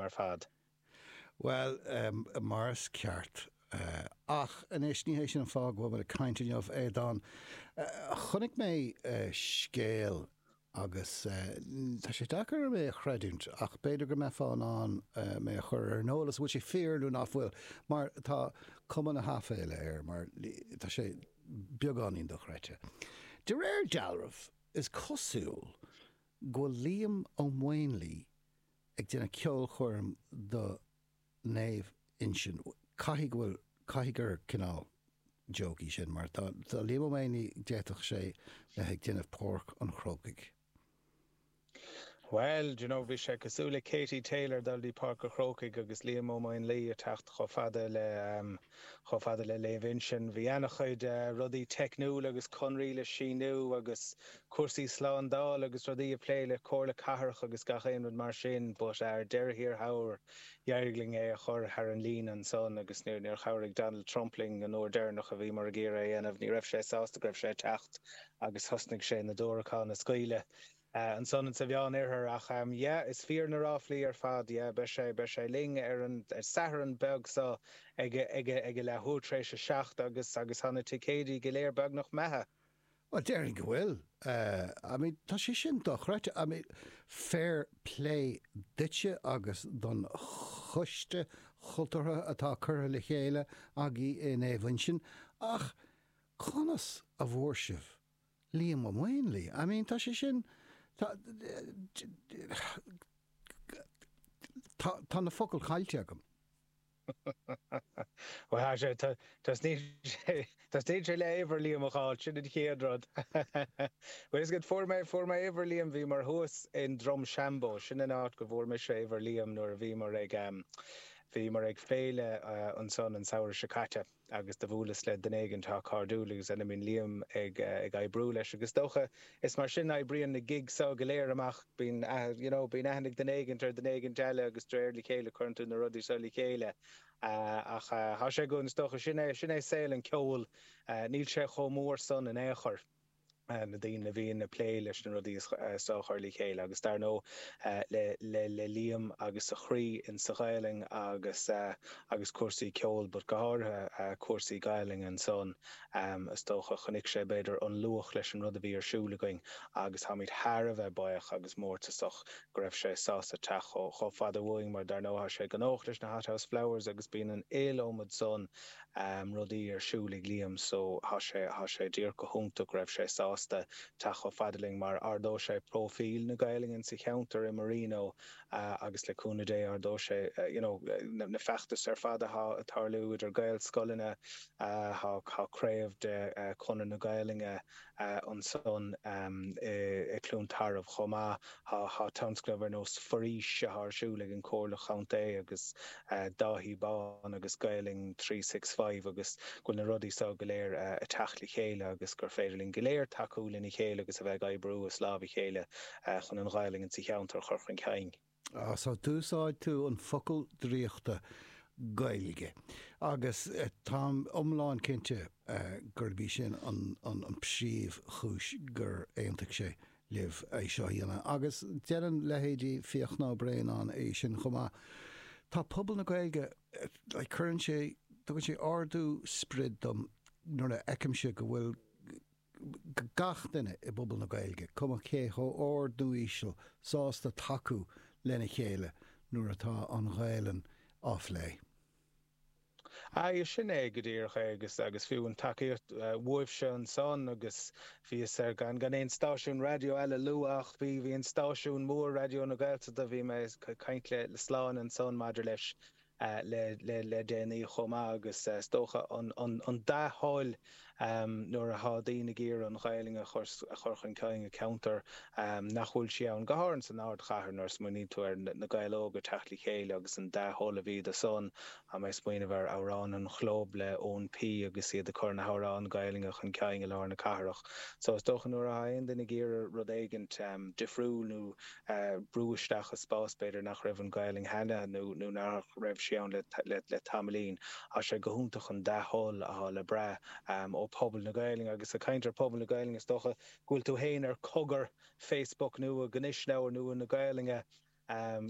ar fad. Bhuel, mar is ceart. Ach anois, ní hé sin an fáth go bhfuil muid ag caint inniu, Aodán. Chonaic mé scéal agus tá sé deacair orm é a chreidiúint ach b'fhéidir go mbeifeá in ann mé a chur ar an eolas an bhfuil sé fíor nó nach bhfuil mar tá cuma na haiféala air mar tá sé beagáinín dochreidte. De réir dealraimh, is cosúil go bhfuil Liam Ó Maonlaí ag déanamh ceolchoirm do Naomh Uinseann. Caithfidh go bhfuil, caithfidh gur cineál joke é sin mar tá Liam Ó Maonlaí, d'fhéadfadh sé bheith ag déanamh Páirc an Chrócaigh. Bhuel, d'you know, bhí sé cosúil le Katie Taylor dul dtí Páirc a' Chrócaigh agus Liam Ó Maonlaí a' teacht chomh fada le, ahem, Chomh fada le Naomh Uinseann, bhí ana-chuid rudaí teicniúla agus conarthaí le síniú agus cúrsaí slándála agus rudaí á bplé le Comhairle Cathrach agus gach aon rud mar sin but ar deireadh thiar thall, d'éirigh linn é a chur thar an líne ansan agus níor chabhraigh Donald Trump linn an uair deireanach a bhíomar ag iarraidh é a dhéanamh, ní raibh sé sásta go raibh sé ag teacht agus thosnaigh sé na diúracáin a scaoileadh. Eh, ansan insa Mheán Oirthear ach, em, yeah, is fíor na ráflaí ar fad, yeah, beidh sé, beidh sé linn ar an, ar Satharn beag so ag a, ag a, ag a leath uair t'réis a seacht agus, agus thá na ticéidí go léir beagnach imithe. Bhuel, déarfainn go bhfuil. Eh, I mean, tá sé sin dochreidte. I mean, fair plé duitse agus don choiste chultúrtha atá curtha le chéile agaibh i Naomh Uinseann, ach conas a bhfuair sibh Liam Ó Maonlaí, I mean tá sé sin, tá, tá, tá na focail caillte agam. Bhuel, tá sé, tá, tosnaíonn sé, tosnaíonn sé le uimhir Liam a fháil, sin an chéad rud. Bhuel, is cosúil go, fuair mé, fuair mé uimhir Liam, bhíomar thuas in Drumshambo, sin an áit go bhfuair mise uimhir Liam nuair a bhíomar ag, bhíomar ag féile ansan an samhradh seo caite. agus do bhuaileas le duine éigint thá cairdiúil agus a mbíonn Liam ag ag oibriú leis agus is dócha is mar sin a oibríonn na gigs go léir amach bíonn aith you know bíonn aithne ag duine éigint ar duine éigint eile agus dréir le chéile cuireann tú na rudaí so le chéile ach thá sé go is dócha sin é sin é saol an cheoil níl sé chomh mór san in aon chor. na daoine a bhíonn ag plé leis na rudaí so a chur le chéile agus dar ndó le Liam agus a chroí in sa Ghaelainn agus agus cúrsaí ceoil but go háirithe cúrsaí Gaelainn ansan is dócha chonaic sé b'fhéidir an luach leis an rud a bhí ar siúl againn agus táimid thar a bheith baoch agus mórtasach go raibh sé sásta teacht chomh fada uainn mar dar ndó thá sé gnóthach leis na Hothouse Flowers agus bíonn an iliomad san rudaí ar siúl ag Liam so thá sé, thá sé díreach go hiontach go raibh sé sásta teacht chomh fada linn mar ardóidh sé próifíl na Gaelainne sa cheantar i Marino agus le cúnamh Dé ardóidh sé you know na feachtais ar fad athá ag tarlú idir Gaelscoileanna thá craobh de Chonradh na Gaelainne ansan i gCluain Tarbh chomh maith. Tá tionscnamh ar nós Foraois athá ar siúl ag an Comhairle Chontae agus Dáithí Bán agus Gaolainn Three Six Five agus go bhfuil na rudaí so go léir a' teacht le chéile agus gur féidir linn go léir tacú lena chéile agus a bheith ag oibriú as láimh a chéile chun an Ghaolainn insa cheantar a chur chun cinn. Sea, d'úsáid tú an focal draíochta Gaeilge agus táim iomlán cinnte gurb í sin an príomh chúis gur aontaigh sé libh é seo a dhéanamh agus deireann leithéidí Fiachna Ó Braonáin é sin chomh maith. Tá pobal na Gaeilge, like, cuireann sé, tugann sé ardú sprid dom nuair a fheicimse go bhfuil, gach duine i bpobal na Gaeilge, cuma cé chomh ard nó íseal, sásta tacú lena chéile nuair atá an Ghaelainn á phlé. Aye, sin é go díreach é agus fiú an tacaíocht uaibhse ansan agus bhí fhios ar gan gan aon stáisiún raidió eile lua ach bhí bhí an stáisiún mór Raidió na Gaeltachta bhí mé ag caint le le Slán ansan maidir leis le déanaí chomh maith agus is dócha an dea-thoil nuair atá daoine ag iarraidh an Ghaelainn a chur chun cinn i gceantar nach bhfuil sí ann, go háirithe san ardchathair nuair a smaoiníonn tú ar na Gaeil Óga teacht le chéile agus an dea-thoil a bhí do san. Tá mé ag smaoineamh ar Amhrán an Chlub le Eoin P agus iad ag cur na hamhráin Ghaelainne chun cinn i lár na cathrach. So is dócha nuair atá aon duine ag iarraidh rud éigint difriúil nó a bhrú isteach i spás b'fhéidir nach raibh an Gaolainn cheana nó nach raibh sí ann le tamaillín. Thá sé go hiontach an dea-thoil athá le brath ó pobal na Gaolainne. Agus a caint ar pobal na Gaolainne is dócha go bhfuil tú fhéin ar Cogar Facebook nua, gnúisleabhar nua na Gaolainne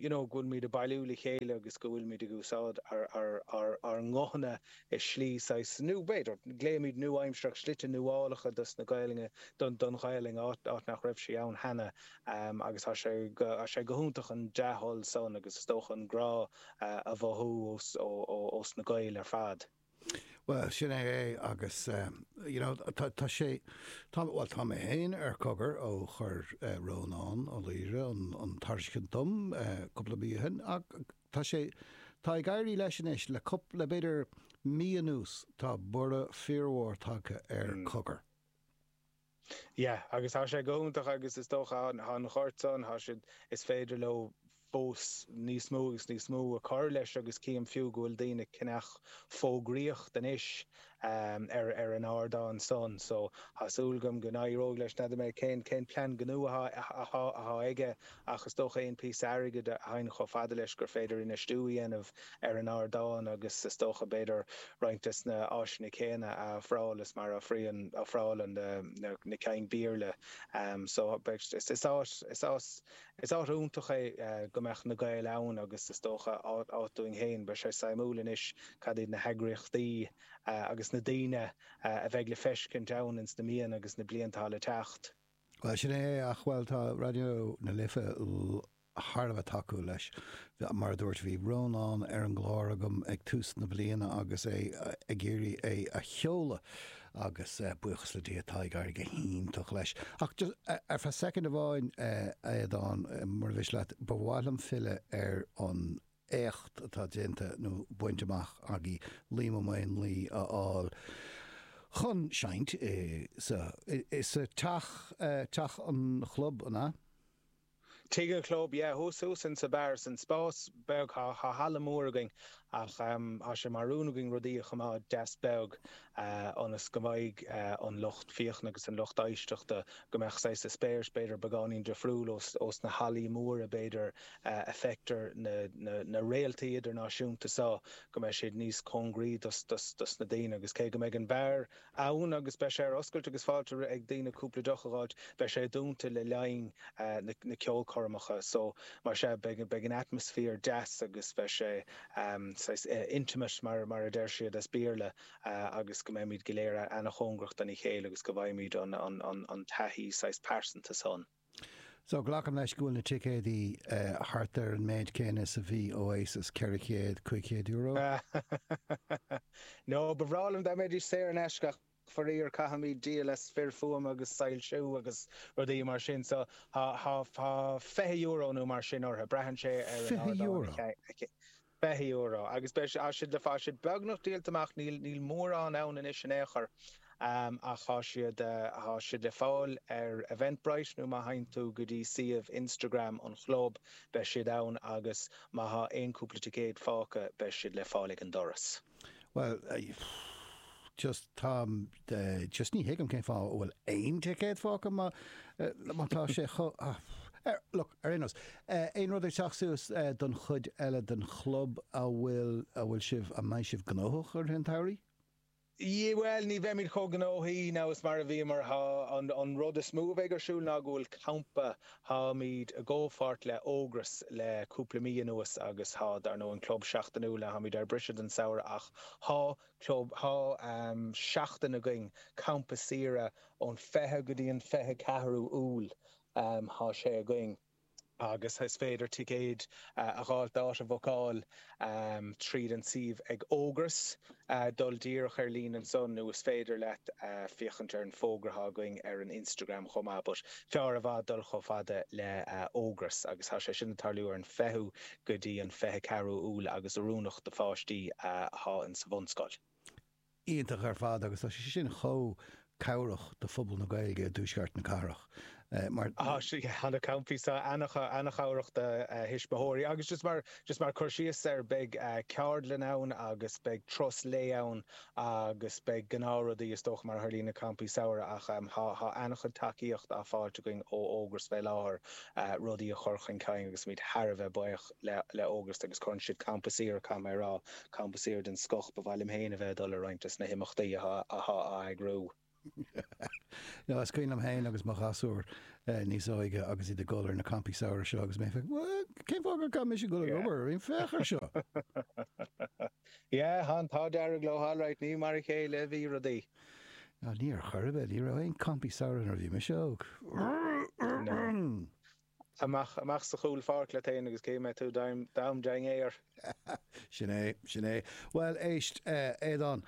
you know go bhfuilimíd a bailiú le chéile agus go bhfuilimíd ag úsáid ár nguthanna i slí saghas nua b'fhéidir glaoimíd nua-aimsearach slite nuálacha dos na Gaolainne don Ghaolainn áit nach raibh sí ann cheana. Um, agus tá sé go, tá sé go hiontach an dea-thoil san agus is dócha an grá eh a mhothú ós, ó, ó, ós na Gaeil ar fad. Bhuel, sin é é agus em, you know tá, tá sé, tá, bhuel tá mé féin ar Cogar ó chuir eh Rónán Ó Laoire an, an tairiscint dom eh cúpla mí ó shin ach tá sé, tá ag éirí leis anois le cúpla, le b'fhéidir mí anuas tá borradh fíormhór tagtha ar Cogar. Yeah, agus tá sé go hiontach agus is dócha go bhfuil an gort san, tá siad, is féidir leo fós níos mó agus níos mó a cur leis agus cím fiú go bhfuil daoine ag ceannach fógraíocht anois ar ar an ardán san so tá súil agam go n-éireoidh leis, n'fheadar mé cén cén plean gnó atá atá atá aige Ach is dócha aon phíosa airgid a theigheann chomh fada leis gur féidir infheistiú a dhéanamh ar an ardán agus is dócha b'fhéidir roinnt des na háiseanna céanna a ofráil is mar a ofrálann na cinn Bhéarla so. Is áit, is áit iontach é go mbeadh na Gaeil ann agus is dócha áit dúinn féin. Beidh sé suimiúil anois cad iad na heagraíochtaí agus na daoine a bheidh le feiscint ann ins na míonna agus na blianta atá le teacht. Bhuel, sin é é, ach, bhuel, tá Raidió na Life thar a bheith tacúil leis. Mar a dúirt, bhí Rónán ar an gclár agam ag tús na bliana agus é ag iarraidh é a sheoladh agus buíochas le Dia tá ag éirigh go hiontach leis. Ach just, ar feadh soicind amháin, a Aodáin, mura mhiste leat, ba mhaith liom filleadh ar an éacht atá déanta nó bainte amach agaibh Liam Ó Maonlaí a fháil chun seinnt i sa i sa teach teach an chlub an ea? Tigh an chlub yeah thuas thuas insa bheár san spás beag thá thá halla mór againn ach em thá sé mar rún againn rudaí a choimeád deas beag ionas go mbeidh an lucht féachana agus an lucht éisteachta, go mbeadh saghas eispéireas b'fhéidir beagáinín difriúil ós na hallaí móra b'fhéidir a bhfeictear na réaltaí idirnáisiúnta so, go mbeidh siad níos cóngaraí dos na daoine agus cé go mbeidh an beár ann agus beidh sé ar oscailt agus fáilte roimh dhaoine cúpla deoch a dh'fháilt, beidh sé dúnta le linn na ceolchoirmeacha so mar sea, beidh an atmaisféar deas agus beidh sé. saghas intimate mar mar a deir siad as Béarla agus go mbeimíd go léir ana-chóngarach dona chéile agus go bhfaighimíd an an an taithí saghas pearsanta san. So glacaim leis go bhfuil na ticéadaí thart ar an méid céanna is a bhí Oasis, €400, €500? No, ba bhreá liom dá mbeidís saor in aisce ach. Faraor caithfimíd díol as fir fuaime agus soilsiú agus rudaí mar sin so thá fiche euro nó mar sin ortha. Braitheann sé ar an Fiche ardán euro? a Fiche euro agus thá siad thá siad le fáil siad beagnach díolta amach níl níl mórán ann anois in aon chor ach thá siad thá siad le fáil ar Eventbrite nó má theigheann tú go dtí suíomh Instagram an Chlub beidh siad ann agus má thá aon cúpla ticéad fágtha beidh siad le fáil ag an doras. Bhuel, just, táim, just ní thuigim cén fáth a bhfuil aon ticéad fágtha má tá sé chomh, look, ar aon nós, aon rud ag teacht suas don chuid eile den chlub a bhfuil, a bhfuil sibh, a mbeidh sibh gnóthach i rith an tsamhraidh? Yeah, bhuel, ní bheimid chomh gnóthaí now is mar a bhí, mar tá an rud is mó a bheidh ar siúl ná go bhfuil campa Táimíd i gcomhpháirt le Ógras le cúpla mí anuas agus tá, dar ndóigh, an club seachtainiúil a táimíd ar briseadh don samhradh ach tá club, tá seachtain againn, campa saoire ón 20 go dtí an 24ú Iúil tá sé againn agus is féidir ticéid a dh'fháilt, áit a bhucáil, tríd an suíomh ag Ógras, dul díreach ar líne ansan nó is féidir leat féachaint ar an bhfógra atá againn ar an Instagram chomh maith but fearr i bhfad dul chomh fada le Ógras agus tá sé sin ag tarlú ar an 20ú go dtí an 24ú Iúil agus oiriúnach do pháistí atá insa bhunscoil. iontach ar fad agus tá sé sin chomh cabhrach do phobal na Gaeilge i dTuaisceart na cathrach na campaí seo, ana-chabhrach do thuismitheoirí agus just mar, just mar cur síos air beidh ceardlann ann agus beidh turas lae ann agus beidh gnáth rudaí is dócha mar a tharlaíonn i gcampaí samhraidh ach tá ana-chuid tacaíocht á fáilt againn ó Ógras fé láthair rudaí a chur chun cinn agus muid thar a bheith buíoch. le Ógras agus cuireann siad campa saoire, caithfidh mé a rá, campa saoire den scoth. Ba mhaith liom féin a bheith ag dul ar roinnt des na himeachtaí athá á eagrú. Nó is cuimhin liom féin agus mo ghasúir níos óige agus iad ag dul ar na campaí samhraidh seo agus mé ag féachaint, bhuel, cén fáth gur caithfidh mise dul ag obair ar aon, féach ar seo! Yeah, han, tá an t-ádh dearg leo alright, ní mar a chéile a bhí rudaí. Ar chor ar bith, ní raibh aon campaí samhraidh nuair a bhí mise óg. amach, amach sa chúl pháirc leat fhéin agus ní bheidh tú in aon dainséar. Sin é, sin é. Bhuel, éist, a Aodáin,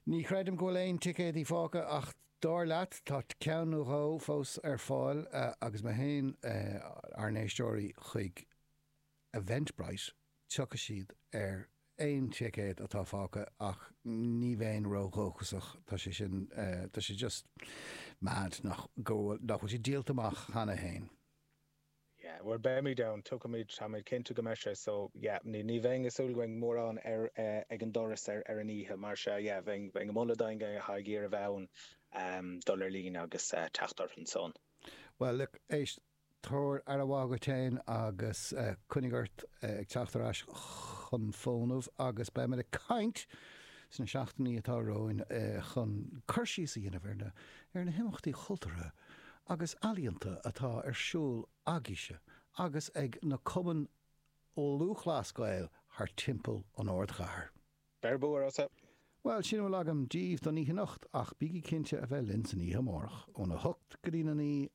ní chreidim go bhfuil aon ticéadaí fágtha ach dar leat tá ceann nó dhó fós ar fáil agus má théann ár n-éisteoirí, chuig. Eventbrite, tiocfaidh siad ar aon ticéad atá fágtha ach ní bheinn ró-dhóchasach, tá sé sin, tá sé just mad nach bhfuil siad díolta amach cheana féin. Yeah, bhuel beimid ann, tuigimid, táimid cinnte go mbeidh sé so, yeah, ní bheinn ag súil go mbeidh mórán ar, ag an doras ar an oíche mar sea, yeah, bheinn ag moladh daoine atá ag iarraidh a bheith ann dul ar líne agus teacht orthu ansan. Bhuel look, éist. Tabhair aire mhaith dhuit féin agus coinnigh ort ag teacht ar ais chun fónamh agus beimid ag caint sna seachtainí atá romhainn chun cur síos a dhéanamh ar na ar na himeachtaí chultúrtha agus ealaíonta atá ar siúl agaibhse agus ag na Cumainn Lúthchleas Gael thar timpeall an ardchathair. Beir bua agus! Bhuel, sin a bhfuil agam díbh don oíche anocht ach bígí cinnte a bheith linn san oíche amárach óna hocht go dtí a naoi